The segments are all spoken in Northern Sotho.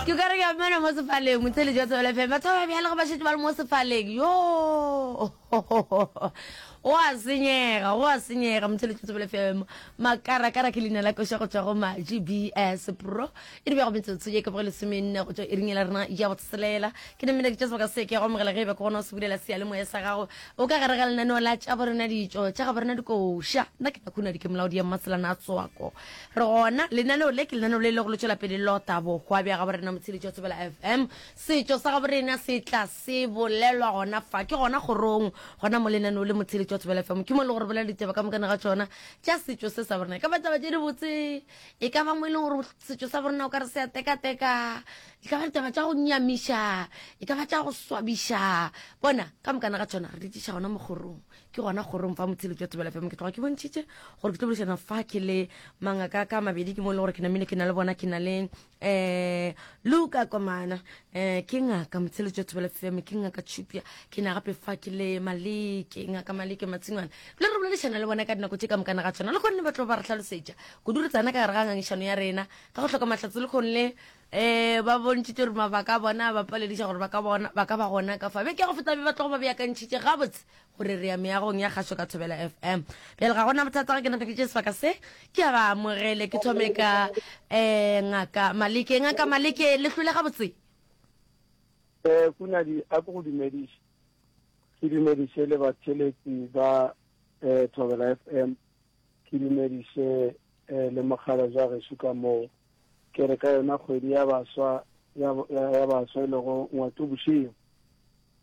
Ke ka re ke a mmena mo sefaleng, Motsheli jwa Tsebele FM. Batho ba ba bjale ge ba šetše ba le mo sefaleng, yoo! Go a senyega, go a senyega, Motsheli jwa Tsebele FM. Makarakara ke leina la koša go tšwa go Maji BS Pro. E dibja go metsotso ye ka boge lesomenne go tšwa iring ya la rena ya botshelela. Ke ne mmena ke tša sebaka se ke ya go amogela ge e be ke gona o se bulela seyalemoya sa gago. O ka gare ga lenaneo la tša borena ditšo, tša ga borena dikoša. Nna ke Nakhunadi ke molaodi ya Mmaselana a Tswako. Re gona, lenaneo le ke lenaneo le lego le tšwela pele le ota bohwa bja gabo rena Motsheditši wa Thobela FM. Setšo sa gabo rena se tla se bolelwa gona fa, ke gona kgorong, gona mo lenaneo le Motsheditši wa Thobela FM. Ke mo e lego gore bolela ditaba ka mokane ga tšona tša setšo se sa bo rena. E ka ba taba tše di botse, e ka ba mo e lego gore setšo sa bo rena o ka re se a tekateka, e ka ba ditaba tša go nyamiša, e ka ba tša go swabiša. Bona, ka mokane ga tšona re di tliša gona mo kgorong. ke gona kgorong fa motshelo jwa thobela fm ke tloga ke bontšhitše gore ke tlo bolešana fa ke le mangaka ka mabedi ke mo e le gore ke namile ke na le bona ke na le um eh, luka komana um ke ngaka motshelo jwa thobela fm ke ngaka tšhupja ke na gape fa ke le maleke ngaka maleke matshingwana le re boledišana le bona ka dinako tše ka mokana ga tshwana le kgonne ba tlo ba re tlhalosetša kudu re tsana ka gare ga ngangišano ya rena ka go tlhoka mahlatse le kgone le um ba bontšhitše gore mabaka a bona ba palediša gore ba ka ba gona ka fa be ke go feta be ba tlogo ba beakantšhitše gabotse gore re ya meagong ya kgašo ka thobela fm bjale ga gona bothata ge ke napeditše sebaka se ke a ba amogele ke thome ka um ngaka maleke ngaka maleke le hlole ga botse um kunadi a ko go dumediše ke dumediše le batheletsi ba um thobela fm ke dumediše um le mogala ja gešo ka moo ke re ka yona kgwedi ya baswa ya baswa e lego ngwatobošego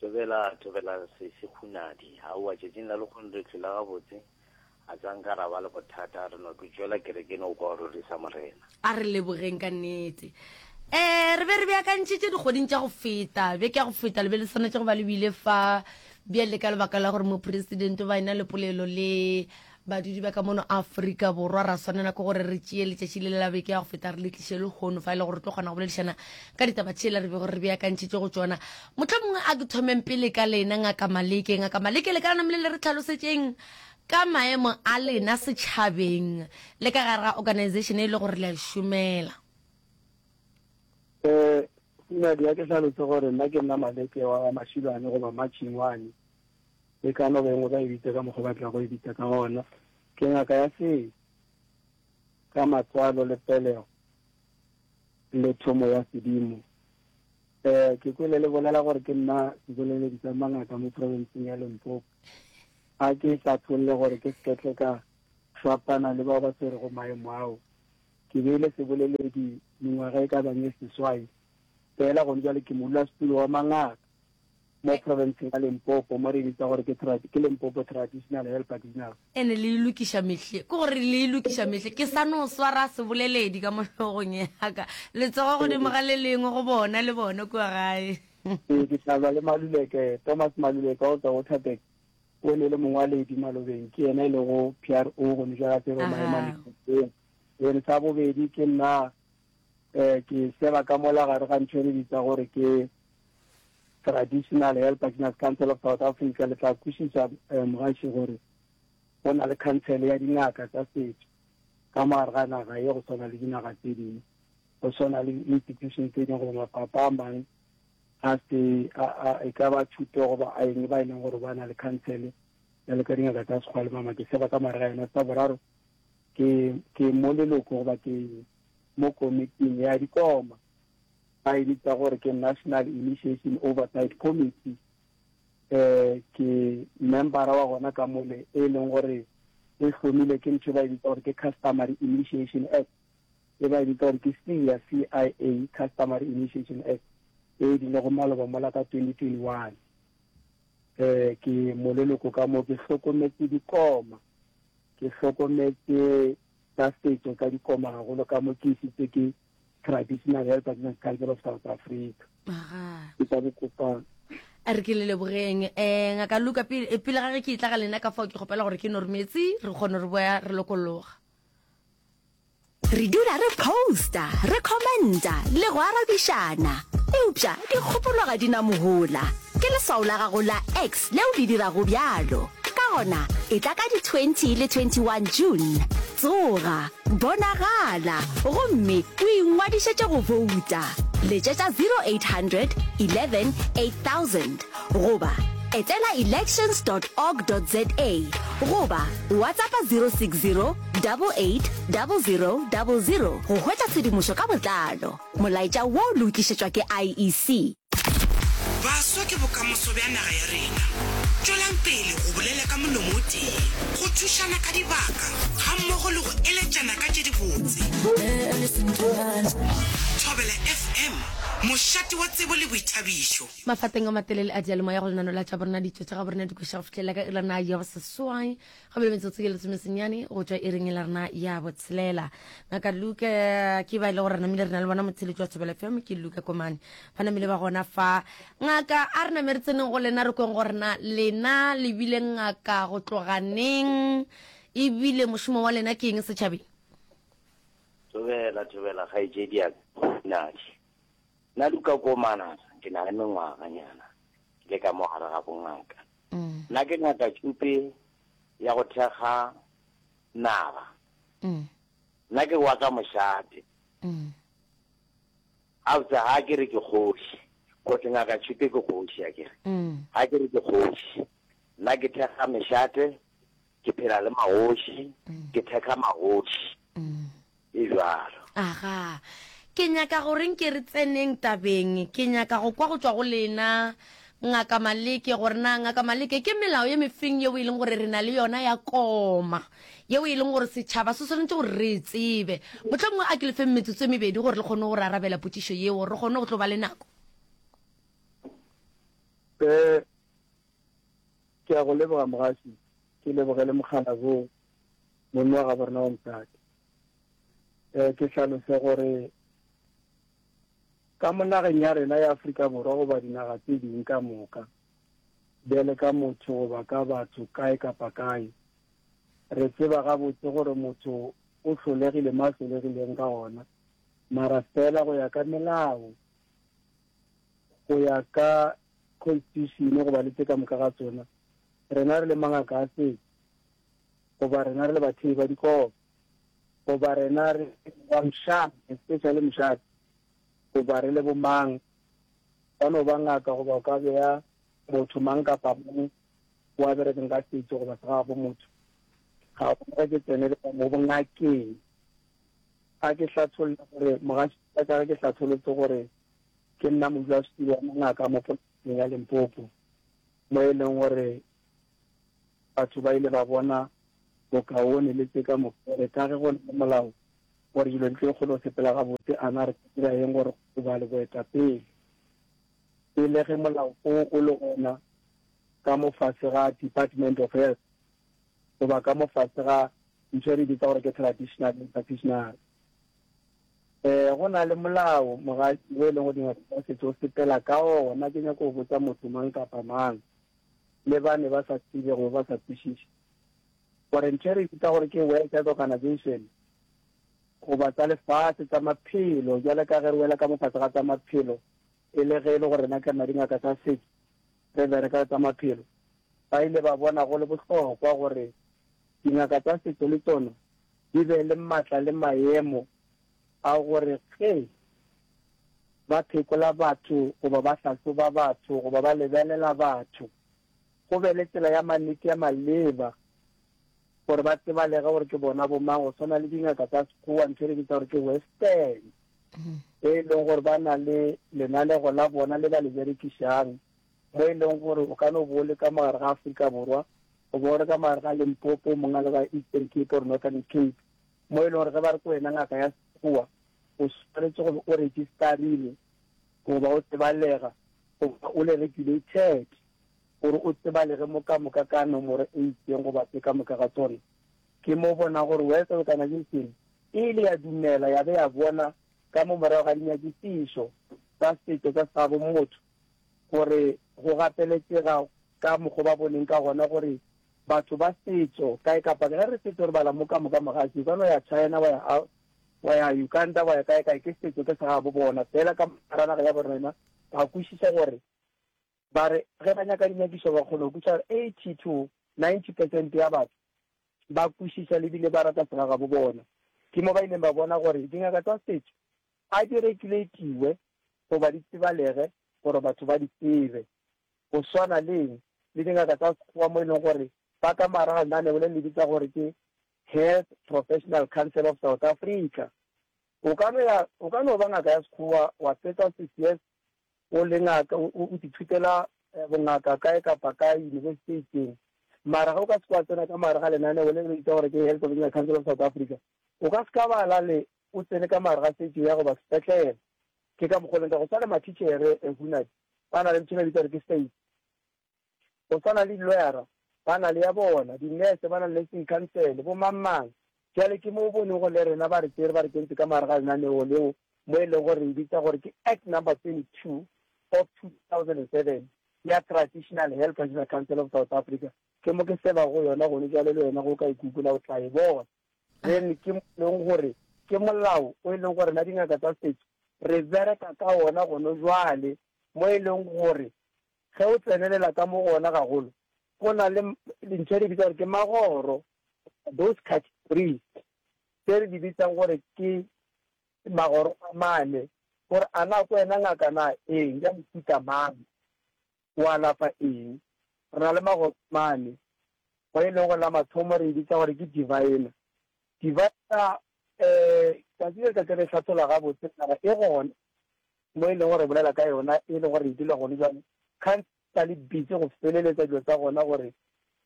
Thobela, thobela se, sehunadi. Aowa, tšatšing la lekgono re hlwela gabotse. A sa nka ra ba le bothata, re no tlo tšwela kerekeng o kwa o rorisa Morena. A re lebogeng ka nnete. Ee, re be re beakantšhitše dikgweding tša go feta, beke ya go feta, le be le swanetše go ba le bile fa bjale ka lebaka la gore Mopresidente o ba e-na le polelo le Badudi ba ka mono Afrika Borwa ra swanela ke gore re tšeye letšatši le le la beke ya go feta re le tliše lehono fa e le gore re tlo kgona go boledišana ka ditaba tšela re be gore re beakantšhitše go tšona. Mohlomongwe mongwe a ke thomeng pele ka lena Ngaka Maleke. Ngaka Maleke, le ka nama le le re tlhalosetšeng ka maemo a lena setšhabeng le ka gare ga organization e le gore le a šomela. Eh, Nadia, ke hlalose gore nna ke nna Maleke wa Mashilwane goba Matšhingwane. e ka no bengwe ba e bitša ka mokgwa ba tlago go e bitša ka gona. Ke ngaka ya seo ka matswalo le pelego le thomo ya sedimo. Um ke kwele le bolela gore ke nna seboleledi sa mangaka mo provinceng ya Limpopo. A ke hlatholle gore ke seketle ka fapana le bao ba tshwerego maemo ao. Ke beile seboleledi mengwaga e ka bang e seswai fela gone jwale ke modulasetulo wa mangaka. mo profenseng ya Limpopo mo re bitsa gore ke tradi, ke Limpopo Traditional Health Artisanal. Ene le e lokiša mehle, ke gore le e lokiša mehle. Ke sa no swara seboleledi ka mo hlogong ya ka, letsogo godimo ga le lengwe go bona le bona kua gae. Ee, ke tla lwa le Maluleke. Thomas Maluleke of the Waterberg, o ne e le mongwaledi malobeng, ke yena e lego PRO gomme bjale a tsere maemo a Limpopo. Then sa bobedi ke nna um ke seba ka mola gare ga ntho e re bitsa gore ke traditional health practitioners council of south africa le tla kwešiša um mogaši gore go na le khansele ya dingaka tsa setso ka mogare ga naga ye go swana le dinaga tse dingwe go swana le institution tse dingwe goba mafapha a mang a se e ka ba thuto goba a eng ba e leng gore ba na le khansele ya le ka dingaka tsa sekgwa le mama ke seba ka mare ga yona tsa boraro Ke, ke mo leloko goba ke mo komiting ya dikoma, ba e bitsa gore ke National Initiation Oversight Committee. Eh, ke membara wa gona ka mole, e leng gore e hlomile ke ntho e ba e bitsa gore ke Customary Initiation Act, e ba e bitsa gore ke CIA, CIA, Customary Initiation Act, e e dilego maloba mola ka 2021. Eh, ke mo leloko ka mo, ke hlokometse dikoma. Ke hlokometse tsa setšo tsa dikoma gagolo ka mo ke isitse ke Traditional Health Advance Council of South Africa. Aga. Ke tla bokopa a re ke le lebogeng um ngaka luka pele eh, pele ga ge ke itla ga lena ka fao ke kgopela gore ke normetse re kgone re boya re lokologa Re dula re posta, re commenta le go arabišana. Eupša dikgopolo ga di na mohola. Ke leswao la gago la X leo le dirago bjalo. Ka gona, etla ka di 20 le 21 June. Tsoga, bonagala, gomme o ingwadišetše go bouta. Letšetša 0800 11 8000 goba etela elections dot org dot za goba WhatsAppa 060 880000 go hwetša tshedimošo ka botlalo. Molaetša wo o lokišetšwa ke IEC. Baswa ke bokamoso bja naga ya rena. Tšwelang pele go bolela ka molomo o tee, go thušana ka dibaka gammogo le go eletšana ka tše dibotse. Thobela FM, mošate wa tsebo le boithabišo. Mafapeng a matelele a diyalemoya go lenano la Tša Borena Ditšo Tša Gaborena di kweša go fihlelela ka iri ya nayo seswai. go bile metsotso ye lesomesenyane go tšwa e reng e la rena ya botshelela ngaka luka ke ba e le gore re namile re na le bona motsheletši wa thobela fm ke luka komane ba namile ba gona fa ngaka a re name re tseneng go lena re kweng gorena lena le bile ngaka go tloganeng ebile mošomo wa lena ke eng setšhabeng thobela thobela kgaetšedi ya nadi nna luka komana ke na le mengwaganyana ke le ka mo gare ga bongaka mm. nna ke nyaka tšupe ya go thekga naga mm. nna ke wa ka mošate mm. after ha ke re ke kgoši kote ngaka tšhupe ke kgoši a kere ga mm. ke re ke kgoši nna ke thekga mešate Ke phela le magoši, ke thekga magoši, e bjalo. Aga. Ke nyaka gore nke re tseneng tabeng. Ke nyaka go kwa go tšwa go lena, Ngaka Maleke, gore na, Ngaka Maleke, ke melao ye mefeng yeo e leng gore re na le yona ya koma, yeo e leng gore setšhaba se swanetše gore re e tsebe. Mohlomongwe a ke le feng metsotso e mebedi gore le kgone go re arabela potšišo yeo, gore re kgone go tlo ba le nako. Ke a go leboga Mogasi, ke leboge le Mokgana Bo, monni wa gabo rena wa mosadi. Eh, ke hlalose gore ka mo nageng ya rena ya Afrika Borwa goba dinaga tse ding ka moka, bjale ka motho goba ka batho kae kapa kae, re tseba gabotse gore motho o hlolegile mo a hlolegileng ka gona, mara fela go ya ka melao go ya ka Constitution goba le tše ka moka ga tsona, rena re le mangaka a setšo, goba rena re le bathei ba dikobo, goba rena re ba mšang, especially mošate, goba re le bomang, ba no ba ngaka goba o ka beya motho mang kapa mang o a berekeng ka setšo goba se ga go motho, ga go ke tsene le mo bongakeng A ke hlatholle gore mogašwa wa ka ge ke hlatholotse gore ke nna modulasetulo wa mangaka mo profenseng ya Limpopo mo e leng gore batho ba ile ba bona bokaone le tše ka moka gore ka ge go na le molao gore dilo di tlo kgona go sepela gabotse a na re ka dira eng gore go ba le boetapele e le ge molao o o le gona ka mofase ga Department of Health. goba ka mo fase ga ntho e re bitsa gore ke traditional le traditional. E, go na le molao mogadi o e leng go dingwe tsa setso o sepela ka ona. Ke nyako go botsa motho mang kapa mang le ba ne ba sa tsebe go ba sa kwešiše gore ntho e re bitsa gore ke World Health Organization goba tsa lefatshe tsa maphelo, jwale ka ge re wela ka mo fase ga tsa maphelo, E le ge e le gore na ka madingaka tsa setšo re bereka le tsa maphelo, ba ile ba bona go le bohlokwa gore dingaka tsa setšo le tšona di be le matla le maemo a gore ge ba phekola batho goba ba hlahloba batho goba ba lebelela batho, go be le tsela ya mannete ya maleba gore ba tsebalege gore ke bona bomang, go swana le dingaka tsa Sekgowa ntho e re bitsa gore ke Western. mm-hmm. be e leng gore ba na le lenalego la bona le ba le berekišang mo e leng gore o ka no bo le ka mogare ga aforika borwa o bo re ka mogare ga limpopo mongwe le ba eastern cape or northern cape mo e leng gore ge ba re ko wena ngaka ya sekgowa o tshwanetse go o registerile goba o tsebalega goba o le regulated gore o tsebalege mo ka moka ka nomoro e itseng goba tse ka moka ga tsone ke mo bona gore wes o kana ke seng E ile ya dumela ya be ya bona ka mo morago ga dinyakišišo tsa setšo tsa sabo motho gore go gapeletšega ka mokgwa ba boneng ka gona gore batho ba setšo kae kapa kae, ge re setšo re bala mo ka moka mogatši o ka no ya China wa ya wa ya Uganda wa ya kae kae ke setšo ke sa gabo bona fela ka mora naga ya borena ba kwešiša gore ba re ge ba nyaka dinyakišo ba kgona go kweša gore 80 to 90 percent ya batho ba kwešiša le bile ba rata segagabo bona. Ke mo ba ileng ba bona gore dingaka tsa setšo a di regulatiwe goba di tsebalege gore batho ba di tsebe, go swana le le dingaka tsa sekgowa mo e leng gore ba ka mara ga lenaneo le le bitsa gore ke Health Professional Council of South Africa. O ka no ya, o ka no ba ngaka ya sekgowa wa fetsa six years o le ngaka, o, o, o di thutela eh, bongaka kae kapa kae yunibesiti e itseng, mara ga o ka se kwa tsena ka mare ga lenaneo le le bitsa gore ke Health Original Council of South Africa, o ka se ka bala le o tsene ka mare ga setšo ya goba sepetlele. Ke ka mokgwa o leng ka go sa le mathitšhere eh, Hunadi ba na le ntho e ba bitsa gore ke state. go swana le di-lawyer-ra ba na le ya bona, di-nurse ba na le nursing council, bo mang-mang. Bjale ke mo o bonego le rena ba re tsere ba re kentse ka mogare ga lenaneo leo mo e lego gore re e bitsa gore ke Act number 22 of 2007 ya Traditional Health Traditional Council of South Africa. Ke mo ke seba go yona gone bjale le wena go ka e kukola o tla e bona. Then ke mo e leng gore ke molao o e leng gore na dingaka tsa setso re bereka ka ona gone jwale mo e leng gore Ge o tsenelela ka mo go ona gagolo, go na le dintho re di bitsa gore ke magoro, those categories tse re di bitsang gore ke magoro a mane, gore a na ke wena ngaka na eng, ya mofuta mang, o alafa eng. Re na le magoro a mane, go e leng gore la mathomo re e bitsa gore ke diviner. Diviner, um tsatsi le letšatši re e hlatholla gabotse, mara e gona. mo e lego gore re bolela ka yona e le gore e dula gone jwale, kganthe sa le busy go feleletsa dilo tsa gona gore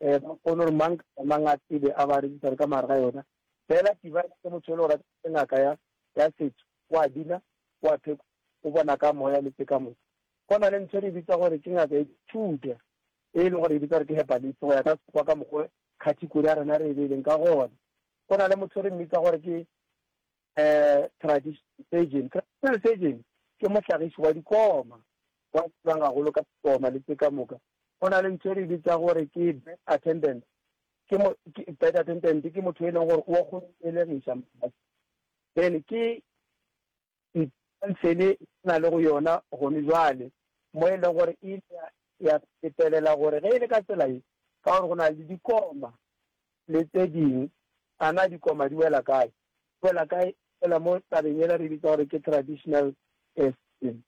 um ba kgone gore mang kapa mang a tsebe a ba register ka mare ga yona. Fela device ke motho e le gore ke ngaka ya ya setso o a bina o a phekola o bona ka moya le tse ka moka. Go na le ntho e re bitsa gore ke ngaka ya thuta e le gore e bitsa gore ke herbalist go ya ka sekgowa ka mokgwa category ya rena re e beileng ka gona. Go na le motho re mmitsa gore ke Traditional surgeon, Traditional surgeon ke mohlagiši wa dikoma wa a tsebang gagolo ka dikoma le tše ka moka. Go na le ntho e re bitsa gore ke bed attendant, ke mo bed attendant ke motho e leng gore o go elegiša motho. Then ke ntshele na le go yona gone jwale mo e leng gore e ya fetelela gore ge e le ka tsela e ka gore go na le dikoma le tse ding. A na dikoma di wela kae? Di wela kae? Di wela mo tabeng yela re bitsa gore ke traditional testing,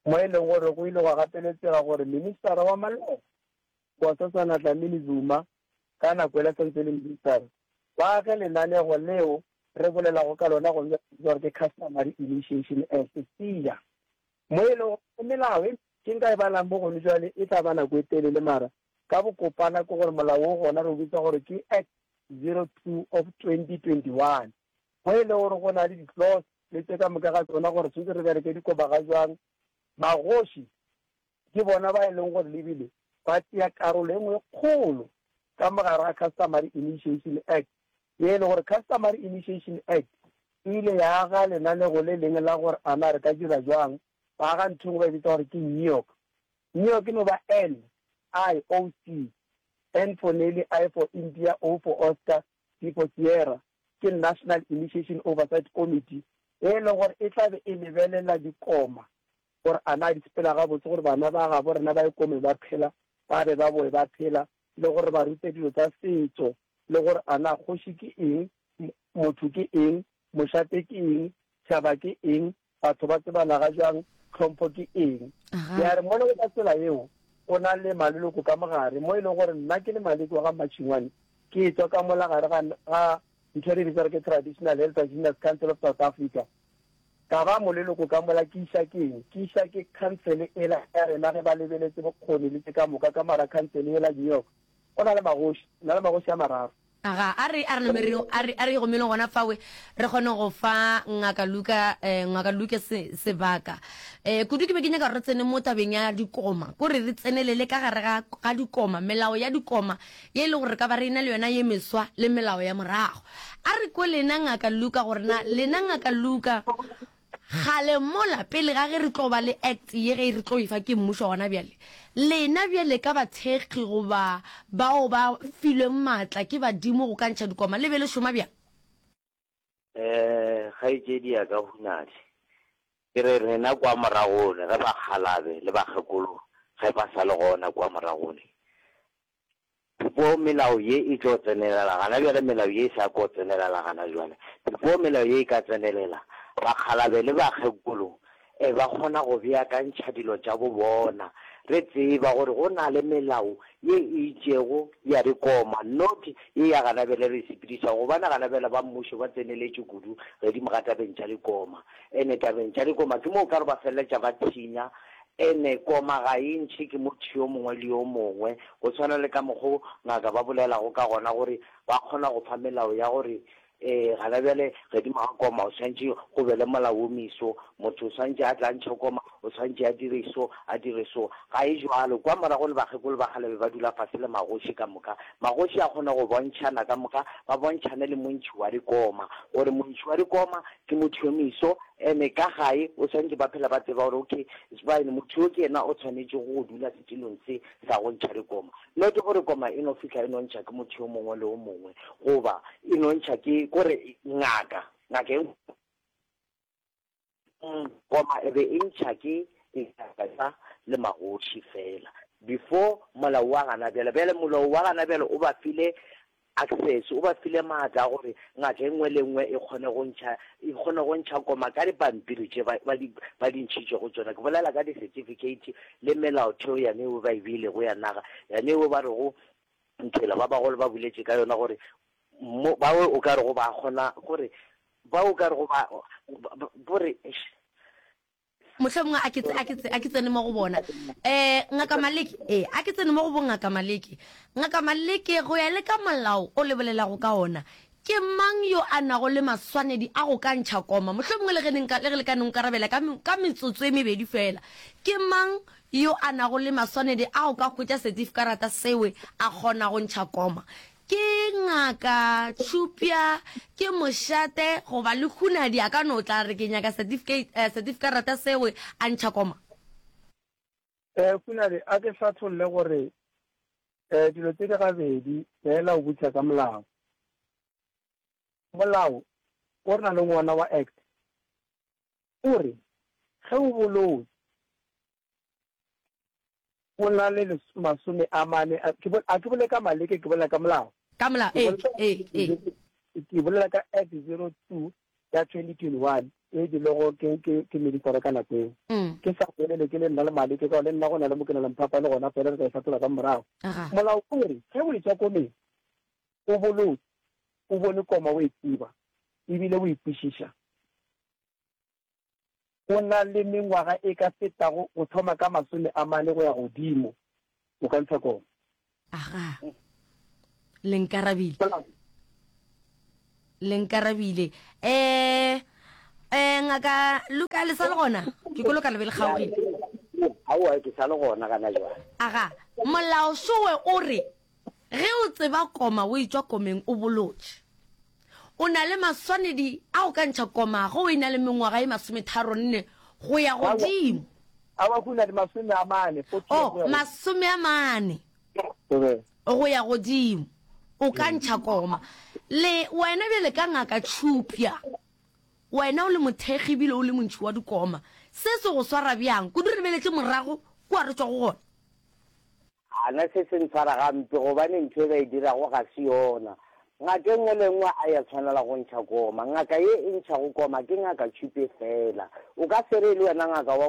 mo e leng gore go ile gwa gapeletsega gore ministara wa maloko, Nkosazana Dlamini-Zuma, ka nako yela sa ntse e le ministara, ba age lenanego leo re bolelago ka lona gomme re bitsa gore ke Customary Initiation Act, CIA, mo e lego gore melao e ke nka e balang mo gone jwale e tla ba nako e telele mara Ka bokopana ke gore molao wo gona re o bitsa gore ke Act 02 of 2021, mo e lego gore go na le di-clause le tše ka moka ga tšona gore tshwantse re bereke dikobaga bjang, bagoši ke bona ba e lego gore lebile ba tšea karolo e nngwe e kgolo ka mo gare ga Customary Initiation Act, ye e lego gore Customary Initiation Act e ile ya aga lenaneo le lengwe la gore a na re ka dira bjang, ba aga ntho e nngwe ba e bitsa gore ke NIOC, New York e no ba N, I, O, C, N for Nelly, I for India, O for Oscar, S for Sierra, ke National Initiation Oversight Committee e e lego gore e tla be e lebelela dikoma gore a na di sepela gabotse gore bana ba gabo rena ba ikomeng ba phela ba be ba boe ba phela le gore ba rute dilo tsa setso le gore a na kgoši ke eng, motho ke eng, mošate ke eng, tšhaba ke eng, Batho ba tsebanaga bjang? Tlhompho ke eng? Ya re, Mola go ka tsela yeo go na le maleloko ka mo gare, mo e lego gore nna ke le Maleki wa ga Mmatšhingwane, ke etšwa ka mola gare ga, ga ntho e re e bitsa gore ke Traditional Elders Winners Council of South Africa, ka ba moleloko ka mola. Ke iša ke eng? Ke iša ke khansele ela ya rena, ge ba lebeletše bokgoni le tše ka moka. Ka mola ga khansele yela, New York, go na le magoši, re na le magoši a mararo. Aga, a re, a re name re, a re, a re igomele gona fawe, re kgone go fa Ngaka Luka, eh, Ngaka Luke se, sebaka. Eh, kudu ke be ke nyaka gore re tsene mo tabeng ya dikoma, ko re, re tsenelele ka gare ga, ga dikoma, melao ya dikoma, ye e lego gore re ka ba re ena le yona ye meswa, le melao ya morago. A re kwelena, Ngaka Luka, gore na lena, Ngaka Luka, Kgale mola, pele ga ge re tlo ba le Act ye ge re tlo e fa ke mmušo gona bjale, lena bjale ka bathekgi goba bao ba filweng maatla ke badimo go ka ntšha dikoma, le be le šoma bjang? Ee, kgaetšedi ya ka hunadi. Ke re rena kwa moragone ge bakgalabe le bakgekolo ge ba sa le gona kwa moragone, Before melao ye e tlo tsenelela gana bjale, melao ye e sa ko tsenelela gana bjale, before melao ye e ka tsenelela, bakgalabe le bakgekolo e ba kgona go beakantšha dilo tša bo bona. Re tseba gore go na le melao ye e itšego ya re koma, not ye ya gana bjale re sepediša, gobane gana bjale ba mmušo ba tseneletše kudu gedimo ga tabeng tša likoma. Ene tabeng tša likoma ke mo o ka re ba feleletša ba thinya Ene, Koma ga e ntšhe ke motho yo mongwe le yo mongwe, go tshwana le ka mokgo ngaka ba bolelago ka gona gore ba kgona go fa melao ya gore, Ee, gana bjale godimo ga koma o swantše go be le molao wo moiso, motho o swantše a tla ntšhe koma, o swantše a dire so, a dire so. Ga e bjalo. Kwa morago le bakgekolo ba kgale be ba dula fase le magoši ka moka. Magoši a kgona go bontšhana ka moka, ba bontšhane le montšhi wa dikoma, gore montšhi wa dikoma Ke motho yo meso ene ka gae o swantše ba phela ba tseba gore okay Sbaene motho yo ke yena o tshwanetšego go dula setilong se sa go ntšha dikoma. Not gore koma e no fihla e no ntšha ke motho yo mongwe le o mongwe goba e no ntšha ke kore ngaka ngaka e ngwe koma e be e ntšha ke dingaka tša le magoši fela before molao wa gana bjale. Bjale molao wa gana bjale o ba file Access o ba file maatla a gore ngaka e nngwe le e nngwe e kgone go ntšha, e kgone go ntšha koma ka dipampiri tše ba, ba di, ba di ntšhitšego go tšona, ke bolela ka di-certificate le melaotheo yane yeo ba e beilego ya naga, yane yeo ba rego Nthwela ba bagolo ba boletše ka yona gore mo, bao o ka rego ba kgona, gore bao o ka rego ba, ba, ba, gore eish. mohlomongwe a ke tse- a ke tse- a ke tsene mo go bona um ngaka maleke ee a ke tsene mo go bongaka maleke ngaka maleke go ya le ka molao o lebolelago ka ona ke mang yo a nago le maswanedi a go ka ntšha koma mohlomongwe le ge ne nka- le ge le ka ne nkarabela ka me- ka metsotso e mebedi fela ke mang yo a nago le maswanedi a go ka hwetša setifkarata sewe a kgona go ntšha koma Ke ngaka tšhupja ke mošate goba le hunadi a ka no tla re ke nyaka certificate certifikarata sewe a ntšha koma. E hunadi a ke hlatholle gore e dilo tse di gabedi fela o butša ka molao. Molao o re na leng wona wa act o re ge o bolotse go na le masome a mane, a ke a ke bole ka maleke, ke bolela ka molao. Ka molao, ee, ee, ee. Ke bolela ka Act 02 ya 2021 e bilego ke ke ke mediforo ka nako eo. Ke sa bolele ke le nna le maleke ka le nna go na le mokena lemphapa le gona fela re ka e fatola ka morago. Molao o re ge o etswa komeng o bolotse o bone koma o e tseba ebile o e kwešiša o na le mengwaga e ka fetago go thoma ka masome a mane go ya godimo. O ka ntsha kong? Aga. Le nkarabile. Le nkarabile. Eh, eh, ngaka Luka, le sa le gona? Ke kolo ka lebe le kgaogile. Aowa, ke sa le gona gana jwale. Aga, molao sowe o re Ge o tseba koma o etšwa komeng o bolotše. O na le maswanedi a go ka ntšha koma ge o e na le mengwaga ye masometharonne go ya godimo. Aowa, go na le masome a mane, fothi, Oh, masome a mane go ya godimo o ka ntšha koma. Le wena bjale ka Ngaka Tšhupja, wena o le mothekgi ebile o le montšhi wa dikoma, se se go swara bjang kudu re beletše morago kua re tšwa go gona? A na se se ntshwara gampe gobane ntho e ba e dirago ga se yona? Ngaka e nngwe le e nngwe a ya tshwanela go ntšha koma. Ngaka ye e ntšhago koma ke ngaka tšhupe feela. O ka se re e le wena ngaka wa,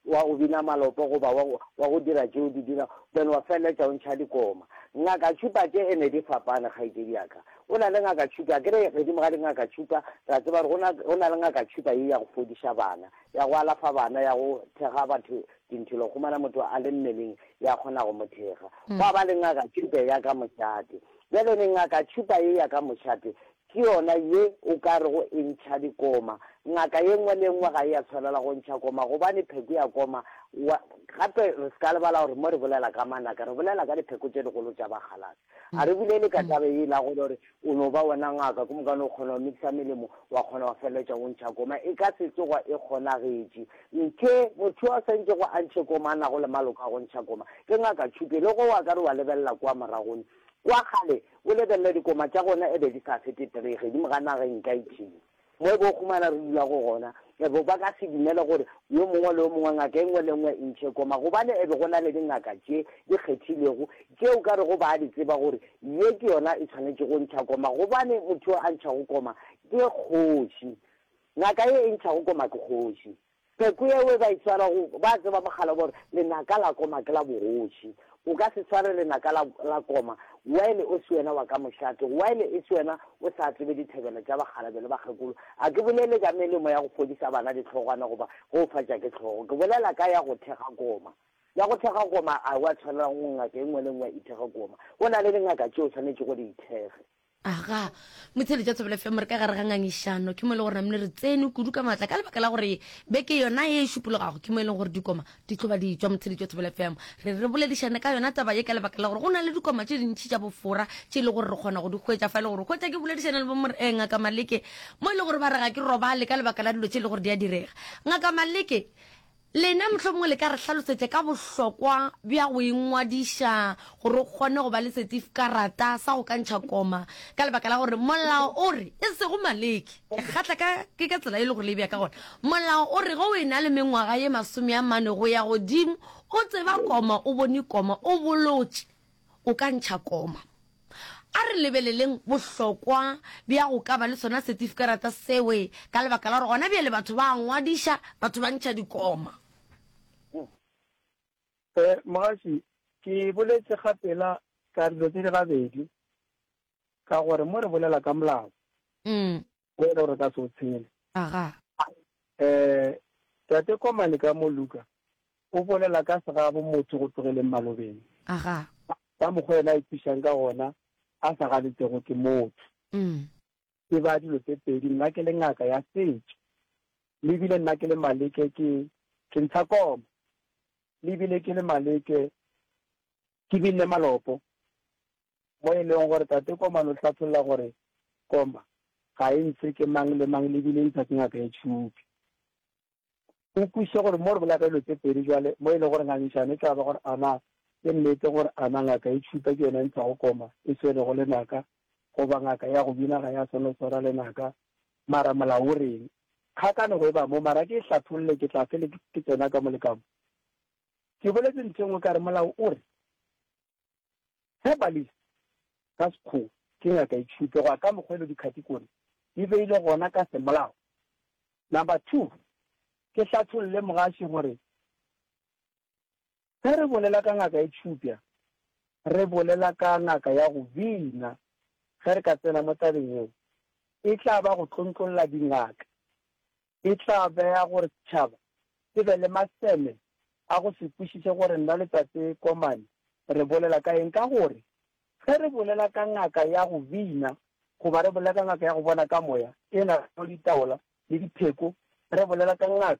wa go bina malopo goba wa, wa go dira tše o di dirago, then wa feleletša o ntšha dikoma. Ngaka tšhupa tše ene di fapane, kgaetšedi ya ka. Go na le ngaka tšhupa, akere godimo ga dingaka tšhupa ra tseba gore go na, go na le ngaka tšhupa ye ya go fodiša bana, ya go alafa bana, ya go thekga batho Dinthelo humana motho a le mmeleng ya kgona go mo thekga. Gwa ba le ngaka tšhupe ya ka mošate. Bjale ne ngaka tšhupa ye ya ka mošate ke yona ye o ka rego e ntšha dikoma. Ngaka ye nngwe le nngwe ga e ya tshwanela go ntšha koma gobane pheko ya koma wa. Gape re se ka lebala gore mo re bolela ka manaka re bolela ka dipheko tše dikgolo tša bakgalase. A re bolele ka taba ye la gore gore o no ba wena ngaka ko mokane o kgona go mixa melemo wa kgona go feleletša o ntšha koma e ka se tsoga e kgonagetše nke motho a sa ntšego a ntšhe koma a nago le maloko a go ntšha koma ke ngaka tšhupe le go wa ka re wa lebelela kwa moragone kwa kgale o lebelele dikoma tša gona e be di sa fete three ge di mo ga nageng ka ithile Mo bokgomana re dulago gona, e be ba ka se dumele gore yo mongwe le yo mongwe, ngaka e nngwe le e nngwe e ntšhe koma, gobane e be go na le dingaka tše di kgethilwego tše o ka rego ba a di tseba gore ye ke yona e swanetše go ntšha koma, gobane motho yo a ntšhago koma ke kgoši. Ngaka ye e ntšhago koma ke kgoši. Pheko yeo e ba e swara go, ba tseba mogala wa gore lenaka la koma ke la bogoši. O ka se sware lenaka la, la koma while o se wena wa ka mošate, while e se wena o sa tsebe dithebela tša bakgalabje le bakgekolo. A ke bolele ka melemo ya go fodisa bana dihlogwana goba ge o fatša ke hlogo. Ke bolela ka ya go thekga koma. Ya go thekga koma a wa tshwanela go ngaka e nngwe le nngwe e ithekge koma. Go na le dingaka tšeo swanetšego di ithekge. Aga, Motshedi tša Thobela FM re ka gare ga ngangišano, ke mo e le gore namne re tsene kudu ka maatla ka lebaka la gore beke yona ye e šupologago ke mo e leng gore dikoma di tlo ba di tšwa. Motshedi tša Thobela FM re re boledišane ka yona taba ye ka lebaka la gore go na le dikoma tše dintši tša bofora tše e le gore re kgona go di hwetša fa e le gore hwetša ke boledišane le bo Mor, eh, Ngaka Maleke mo e le gore ba re ga ke robale ka lebaka la dilo tše e le gore di a direga. Ngaka Maleke, Lena mohlomongwe le ka re hlalosetša ka bohlokwa bja go ingwadiša gore o kgone go ba le setifikarata sa go kantšha koma, ka lebaka la gore molao o re, e sego maleke, ke kgatla ka, ke ka tsela e le gore le e bea ka gona, molao o re ge o e na le mengwaga ye masome a mane go ya godimo, o tseba koma, o bone koma, o bolotše. o ka ntšha koma. A re lebeleleng bohlokwa bja go ka ba le sona setifikarata sewe ka lebaka la gore gona bjale batho ba a ngwadiša batho ba ntšha dikoma. Ee, Mogaši, ke boletše ga pela ka dilo tše di gabedi ka gore mo re bolela ka molao, Go yena o re ka se o tshele. Aga. Eh, Tate Komane ka mo Luka o bolela ka segabo motho go tlogeleng malobeng. Aga. Ka mokgwa yena a ikwišang ka gona a sa ganetšego ke motho. Umm. Tseba dilo tse pedi, nna ke le ngaka ya setšo. Le ebile nna ke le Maleke ke, ke ntsha koma. Le ebile ke le Maleke Ke bile malopo, mo e lego gore Tate Koman o hlatholla gore Komba ga e ntshe ke mang le mang le bile e ntsha ke ngaka ya tšhupi. O kwešiše gore mo re bolela ka dilo tše pedi bjale mo e lego gore ngangišano e tla ba gore a na ke nnete gore a na ngaka ya tšhupa ke yona e ntshago Komba e swerego lenaka goba ngaka ya go bina ga ya swanela go swara lenaka mara molao o reng. Kgakanego e ba mo mara ke e hlatholle ke tla fele ke tsena ka mo le ka mo. Ke boletše ntho e nngwe ka re molao o re, Herbalist, ka Sekgowa, ke ngaka e tšhupe, go ya ka mokgwa e lego dikhatikori di beilwe gona ka semolao. Number two, ke hlatholle mogaši gore ge re bolela ka ngaka e tšhupja, re bolela ka ngaka ya go bina. Ge re ka tsena mo tabeng yeo, e tla ba go tlontlolla dingaka e tla bea gore setšhaba se be le maseme a go se kwešiše gore nna le Tate Koman re bolela ka eng. Ka gore ge re bolela ka ngaka ya go bina goba re bolela ka ngaka ya go bona ka moya e na le ditaola le dipheko, re bolela ka ngaka